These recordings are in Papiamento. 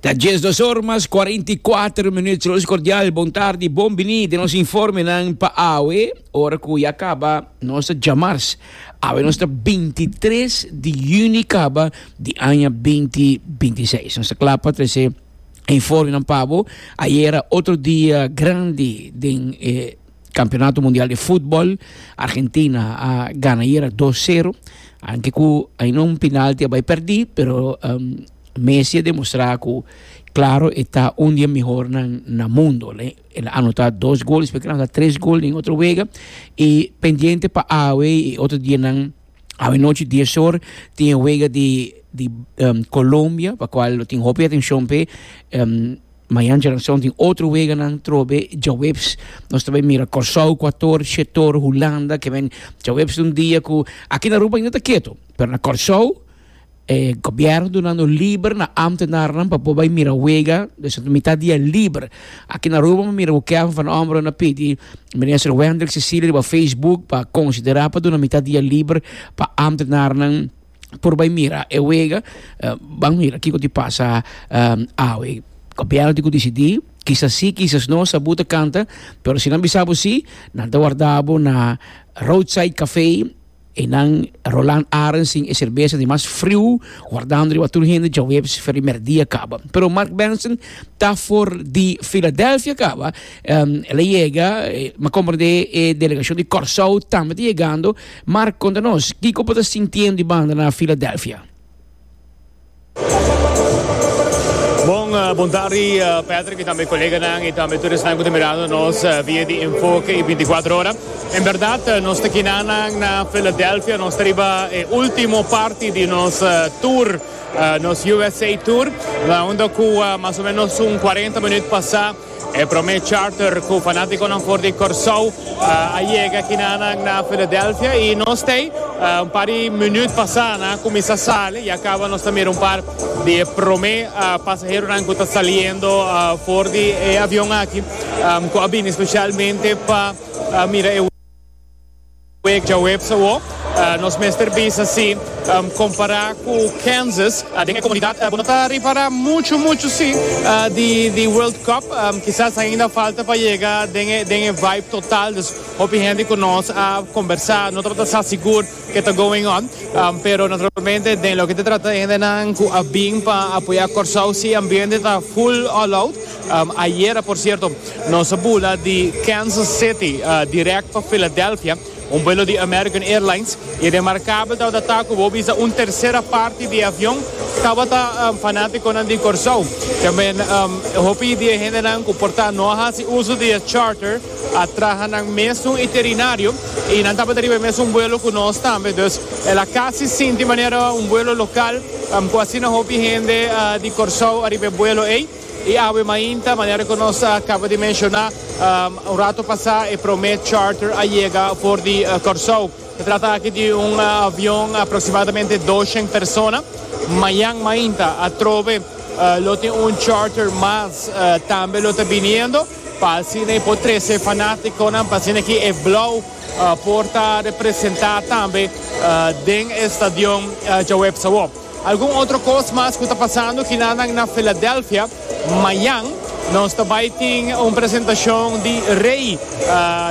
Ta dies dos or mas cuarenta y cuatro minuut. Saludos cordial, bon tarde, bon bini de nos informenan pa awe. Ora cu ya caba nos ta jamars. Awe nos ta 23 di juni caba di aña 2026. Nos ta klaar pa trece informenan pabo. Ayera otro dia grandi den e Campeonato Mundial de Fútbol, Argentina a gana ayer 2-0, aunque cu hay no un penalti a perdí, pero um, Messi a demostrado cu claro está un día mejor na, na mundo. Le, él anotado dos goles, porque anotado tres goles en otro juego, y pendiente para Awe y otro día nan, Awe noche 10 horas, tiene juego de, de um, Colombia, para cual lo tiene hopi atención pe, um, Mañan Generacion tin otro weganan trobe djaweps. Nos ta bai mira Kòrsou, Kuator, Shetor, Hulanda, ke men djaweps di un dia ku aki na Aruba ainda ta ketu, pero na Kòrsou e gobièrnu duna nos liber na amtenarnan pa por bai mira wega, desha ta mitat dia liber. Aki na Aruba mi mira ku Kevin van Ommeren a pidi Minister Wendrick Cecilia riba Facebook pa konsiderá pa duna mitat dia liber pa amtenarnan. por bai mira e wega, uh, ban mira kiko di pasa um, awe. Gobierno di ku disidi, kisas si, kisas no, sabu ta kanta, pero si nan bisabu si, nan ta wardabu na roadside café e nan Roland Arensin e cerveza di mas friu, wardando riba tur hende djaweps feri merdia kaba. Pero Mark Benson ta for di Philadelphia kaba, um, ele yega, eh, ma comprende e delegacion di Corsou tambe ta yegando, Mark konta nos kiko bo ta sintiendo di banda na Philadelphia. Bon, bon tardi Patrick y tambe coleganan y tambe tur esnan cu ta mirando nos via di Enfoke y Binti Kuater Ora. En berdad nos ta kinanan na Philadelphia, nos ta riba e ultimo parti di nos tur, nos USA tour, unda cu mas o menos un cuarenta minut pasa, E prome charter cu fanaticonan for di Corsou a yega kinanan na Philadelphia y nos t'ey un par di minuut pasa na cuminsa sali y a caba nos ta mira un par di e prome pasaheronan cu ta saliendo for di e avion aki cu a bini specialmente pa mira e Week djaweps awo nos mester bisa si compara cu Kansas den e comunidad. Bo no ta ripara mucho mucho si di World Cup kisas ainda falta pa yega den e vibe total dus hopi hende cu nos a combersa no tabata sa sigur ke ta going on pero naturalmente den loke ta trata hendenan cu a bin pa apoya Corsou si ambiente ta full all out. Ayera, por cierto, nos a bula di Kansas City direct pa Philadelphia, un vuelo di American Airlines, y remarcable tabata ta cu bo bisa un tercera parti di e avion tabata fanaticonan di Corsou. Tambe hopi di e hendenan cu por ta no a haci uso di e charter a traha nan mesun iterinario y nan tabata riba e mesun vuelo cu nos tambe, dus el a casi sinti manera un vuelo local cu asina hopi hende di Corsou a riba e vuelo ey. E awe mainta, manera ku nos a kaba di menshoná un ratu pasá, e promé charter a yega for di Kòrsou. E trata aki di un avion aproksimadamente doshen persona. Mañan mainta atrobe lo tin un charter mas tambe lo ta biniendo pa asina e por trese e fanátikonan pa asina ki e Blou por ta representá tambe den e stadion djaweps awor. Algun otro cos mas cu ta pasando kinanan na Philadelphia. Mayan nos ta bay tin un presentacion di Rey.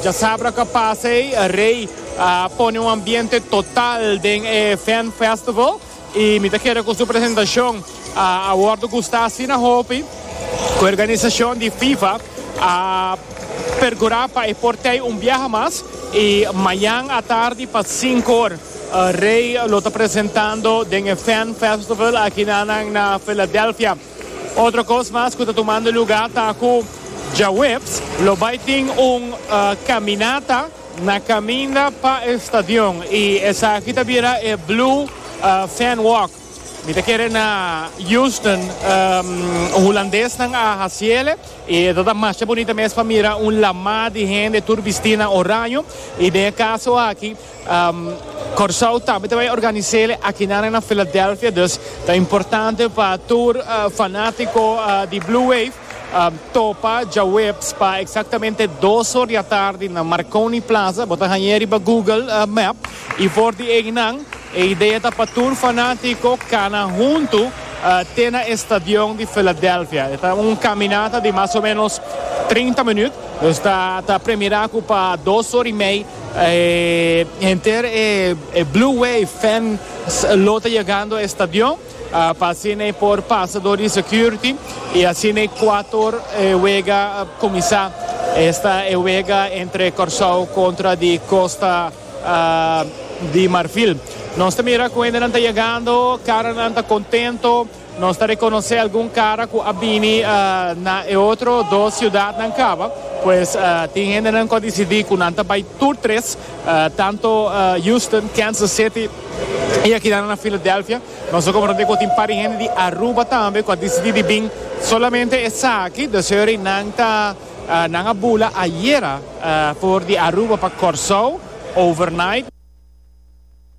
Djasabra cu a pasa ey, Rey a pone un ambiente total den e Fan Festival y mi ta kere cu su presentacion a wordo gusta asina hopi cu e organisacion di Fifa A pergurá pa e por tei un biaha mas i mañan atardi pa sinku or Rey lo ta presentando den e Fan Festival akinanan na Philadelphia. Otro kos mas ku ta tumando lugá ta ku djaweps lo bai tin un kaminata na kaminda pa e stadion i esaki ta bira e Blue Fan Walk. Mi ta kere na Houston, hulandesnan a hasiele i e ta ta masha bunita mes pa mira un lamá di hende tur bistí na oraño i den e kaso aki Kòrsou tambe ta bai organisele akinan na Philadelphia dus ta importante pa tur fanátiko di Blue Wave topa djaweps pa eksaktamente dos or di atardi na Marconi Plaza bo ta hañ'e riba Google map. I for di einan, e idea ta pa tur fanátiko kana huntu te na e stadion di Filadelfia. E ta un kaminata di mas o ménos treinta minüt, dus ta ta premierá ku pa dos ora i mei henter e Blue Wave fans lo ta yegando e stadion pa asina e por pasa dor di security i asina e kuator e wega kuminsá. Esta e wega entre Kòrsou kontra di Costa. di Marfil. Nos ta mira cu hendenan ta yegando, caranan ta contento. Nos ta reconoce algun cara cu a bini na e otro dos ciudadnan caba. Pues tin hendenan cu a decidi cu nan ta bay tur tres, tanto Houston, Kansas City y aki nan na Philadelphia. Nos ta comprende cu tin pari hende di Aruba tambe cu a decidi di bin solamente esaki, de suer y nan ta. Nan a bula ayera for di Aruba pa Corsou overnight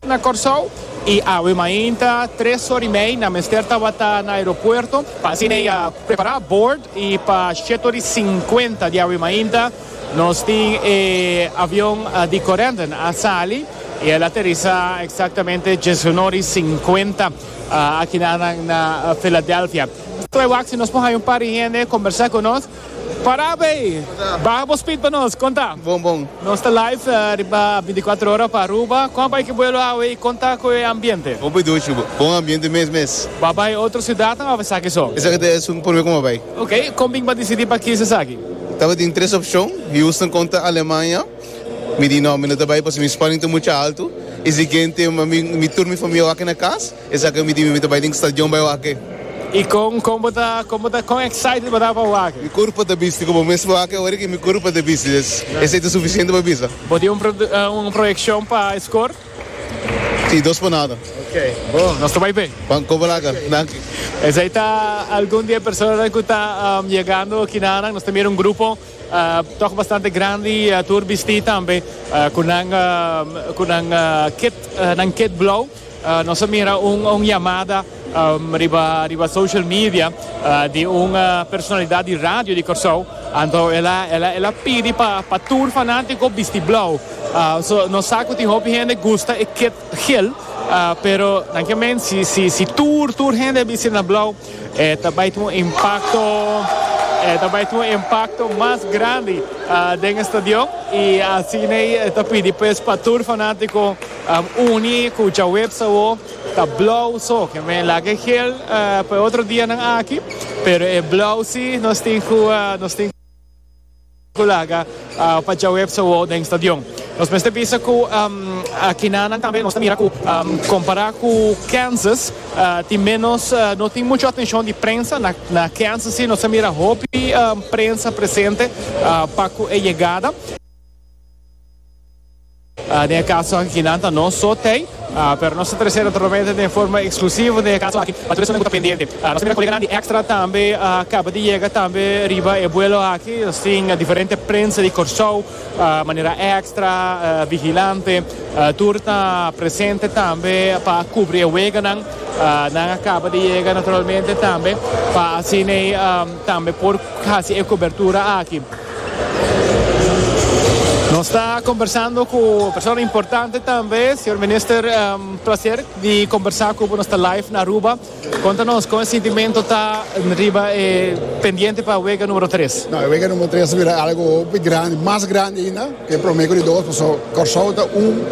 na Corsou y awe mainta tres or y mei nan mester tabata na aeropuerto pa asina e a prepara boord y pa sheto di cincuenta di awe mainta nos tin e avion di Corendon a sali y el a aterisa exactamente diecinuebe or y cincuenta aki na Philadelphia. Claro aki nos por haya un par di hende conversa cu nos Para bay! Baha bo speed pa nos, con ta? Bon bon. Nos ta live riba binticuatro ora pa Aruba. Con a bay ki vuelo awe y con ta cu e ambiente? Bon piduchi bo. Bon ambiente mes mes. Bo bay otro ciudadnan of esaki so? Esaki ta e asunto prome cu bo bay. Ok. Con bin bo decidi pa kiss esaki? Tabatin tres opcion, Houston con ta Alemania. Mi di no, mi no ta bay pasobra mi spanning ta mucha alto. Y siguiente mi tur mi famia wak na cas. Esaki mi di mi mi ta bai den stadion bai wak e. I kon kon bo ta kon bo ta kon excited bo ta pa wak e? Mi kurpa ta bisti ku bo mes pa wak e ora ke mi kurpa ta bisti des esei ta sufisiente pa bisa. Bo tin un un proyekshon pa e skor? Si, dos pa nada. Ok, bo nos ta bai p'e. Pan koba laga. Danki. Esei ta algun di e personanan ku ta yegando kinanan. Nos ta mira un grupo tog bastante grandi tur bisti tambe ku nan ku nan kit nan kit blou. Nos a mira un yamada riba social media di un personalidat di radio di Kòrsou, anto el a pidi pa tur fanátiko bisti blou. So nos sa ku tin hopi hende gusta e kit gel, pero nan ke men si tur tur hende a bisti na blou e ta bai tin un impakto, e ta bai tin un impakto mas grandi den e stadion i asina e ta pidi pues pa tur fanátiko. Uni cu Jawebs awo ta blauw so. Men laga e gel pa e otro dianan aki, pero e blauw si nos tin cu nos tin cu laga pa Jawebs awo den stadion. Nos mester bisa cu akinanan tambe nos ta mira cu compara cu Kansas tin menos no tin mucho atencion di prensa. Na Kansas si nos a mira hopi prensa presente pa cu e yegada. Den e kaso aki nan ta nos so tei, pero nos ta trese naturalmente den forma eksklusivo den e kaso aki pa tur esun ku ta pendiente. Nos primero koleganan di Extra tambe a kaba di yega tambe riba e buelo aki. Nos tin diferente prensa di Kòrsou manera Extra, Vigilante, tur ta presente tambe pa kubri e weganan. Nan a kaba di yega naturalmente tambe pa asina tambe por hasi e kobertura aki. Nos ta kombersando ku e persona importante tambe, señor Minister. Plaser di kombersa ku bo. Nos ta live na Aruba. Konta nos kon e sintimentu ta riba e pendiente pa wega numero tres? No, e wega numero tres ta bira algu hopi grandi, mas grandi ainda ku e prome ku e dos, paso Kòrsou ta un,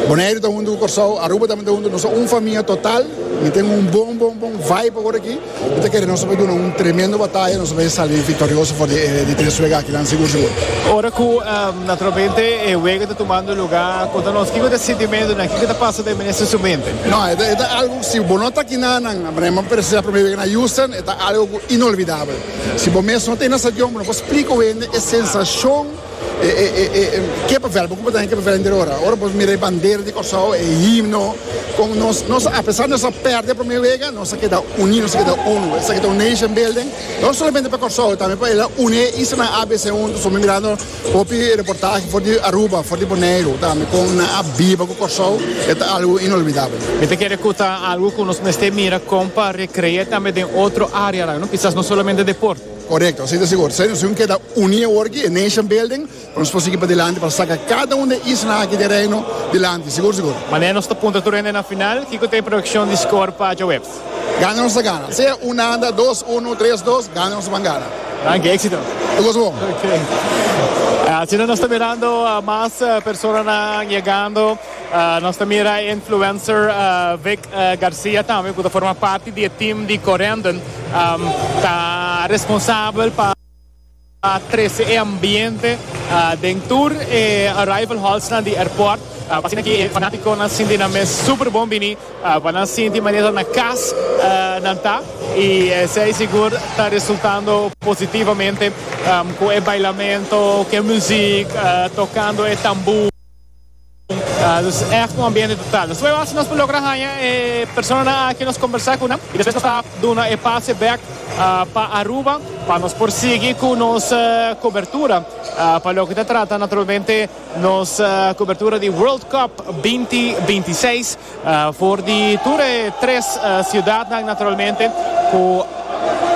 Boneiru ta huntu ku Kòrsou, Aruba tambe ta huntu, nos ta un famia total. Mi ten un bon bon bon vibe awor aki. Bo ta kere nos a duna un tremendo bataya, nos a bay sali victorioso for di tres wega akinan sigur sigur. Ora cu naturalmente e wega ta tumando luga, conta nos kico ta e sintimentonan, kico ta pasa den minister su mente? No, e ta e ta algo, si bo no ta akinan nan, maneer bo a presenta primer wega na Houston, e ta algo inolvidabel. Si bo mes no ta e na stadion, bo no por splica wende e sensacion. Ke papel bo kupatá en ke papel henter ora? Ora bo mira e bandera di Kòrsou, e himno, kon nos nos apesar nos a pèrdè promé wega, nos a keda uní, nos a keda unu. Esaki ta un nation building, no solamente pa Kòrsou, tambe pa el a uní e islanan ABC huntu. So mi mirando hopi reportahe for di Aruba, for di Boneiru tambe, kon nan a biba ku Kòrsou, e ta algu inolbidabel. Mi ta kere ku ta algu ku nos mester mira kon pa rekre'é tambe den otro área nan, no? Kisas no solamente deport. Korekto, asina sigur. Esei nos tin ku keda uní awor aki, e nation building, pa nos por sigui padilanti pa saka kada un di e isla aki di e Reino dilanti. Sigur, sigur. Manera nos ta punta tur hende na final, kiko ta e proyekshon di skor pa djahuebs? Gana nos ta gana. Sea un anda, dos unu, tres dos, gana nos ta ban gana. Danki, éksito. E goso bon. Ok. Asina nos ta mirando mas personanan yegando. Nos ta mira e influencer Vic Garcia tambe cu ta forma parti di e team di Corendon ta responsabel pa trece e ambiente den tur e arrival hallsnan di airport. Asina ki e fanaticonan sinti nan mes super bon bini pa nan sinti manera na cas nan ta y esey sigur ta resultando positivamente cu e bailamento cu e muziek tocando e tamboer. Dus ègt un ambiente total. Nos prueba si nos por logra haña e personanan aki nos kombersá ku nan i despues nos ta duna e pase bèk pa Aruba pa nos por sigui ku nos kobertura pa loke ta trata naturalmente nos kobertura di World Cup binti binti seis. For di tur e tres ciudadnan naturalmente cu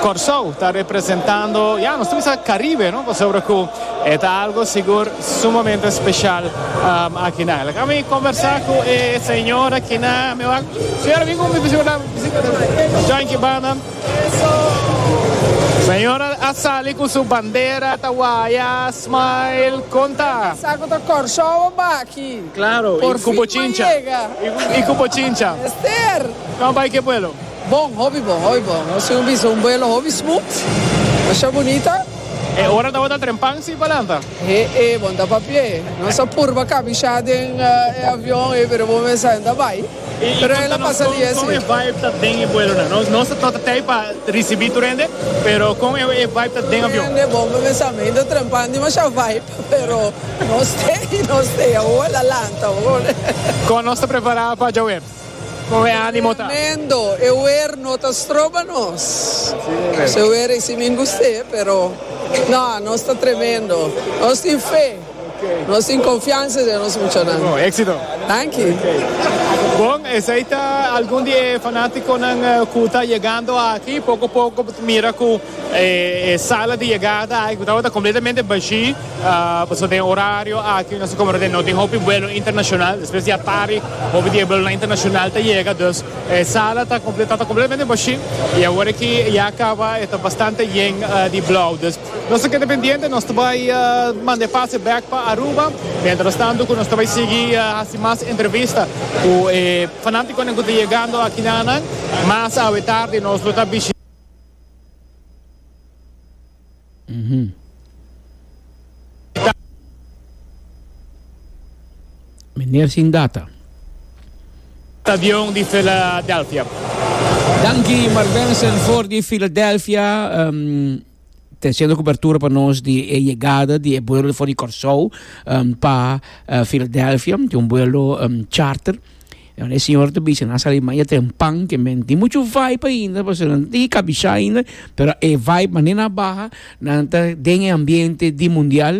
Corsou ta representando, ya nos ta bisa Caribe no, pasobra cu e ta algo sigur sumamente special akinan. Laga mi conversa cu e señor akinan, mi wak señora bin cu mi bisa bira visita Juanchi banda. Señora a sali cu su bandera ta waya, smile, conta. Sa cu ta Corsou o baki? Claro, y cu bo chincha. Y cu bo chincha. Ester. Cua bay ke vuelo? Bon, hopi bon, hopi bon. Nos tin un bisa un vuelo hopi smooth. Masha bunita. E ora tabata trempan si palanta? He e, bon ta pa pie. Nos a purba cabisha den e avion ey, pero bo mester henta bay. Pero ey la pasa di esi. Con e vibe ta den e vuelo nan? Nos, nos ta tey pa ricibi tur hende, pero con e vibe ta den avion? Hende bon bo mester henta trempan di masha vibe. Pero nos te y nos te a oa la lanta hoor. Con nos ta prepara pa dja wer? Con e animo ta? Tremendo, e wer no ta stroba nos. Nos e wer isi min guste pero no nos ta tremendo. Nos tin fe, nos tin confiansa den nos muchanan. Bon, exito. Danki. Bon, esey ta algun di e fanaticonan cu ta yegando aki, poco poco bo ta mira cu. E sala di yegada aki ku tabata kompletamente bashí pasobra den e orario aki nos ta komprende ku no tin hopi vuelo internashonal. Despues di atari hopi di e vuelonan internashonal ta yega, dus e sala ta kompletamente bashí i awor ki ya kaba e ta bastante yen di blou. Dus nos ta keda pendiente, nos ta bai manda e pase bèk pa Aruba, mientrastantu ku nos ta bai sigui hasi mas entrevista ku e fanátikonan ku ta yegando aki na nan. Mas awe tardi nos lo ta bishita. Meneer sin data. Avion di Philadelphia. Danki Mark Benson for di Philadelphia. Um, te haciendo cobertura pa nos di e llegada di e vuelo for di Corsou um, pa uh, Philadelphia, di un vuelo um, charter. Dor e Señor ta bisa nan sali maya ten pan ke men tin muchu vibe ainda pasobra nan tin ki kabishá ainda pero e vibe manera nan a baha nan ta den e ambiente di mundial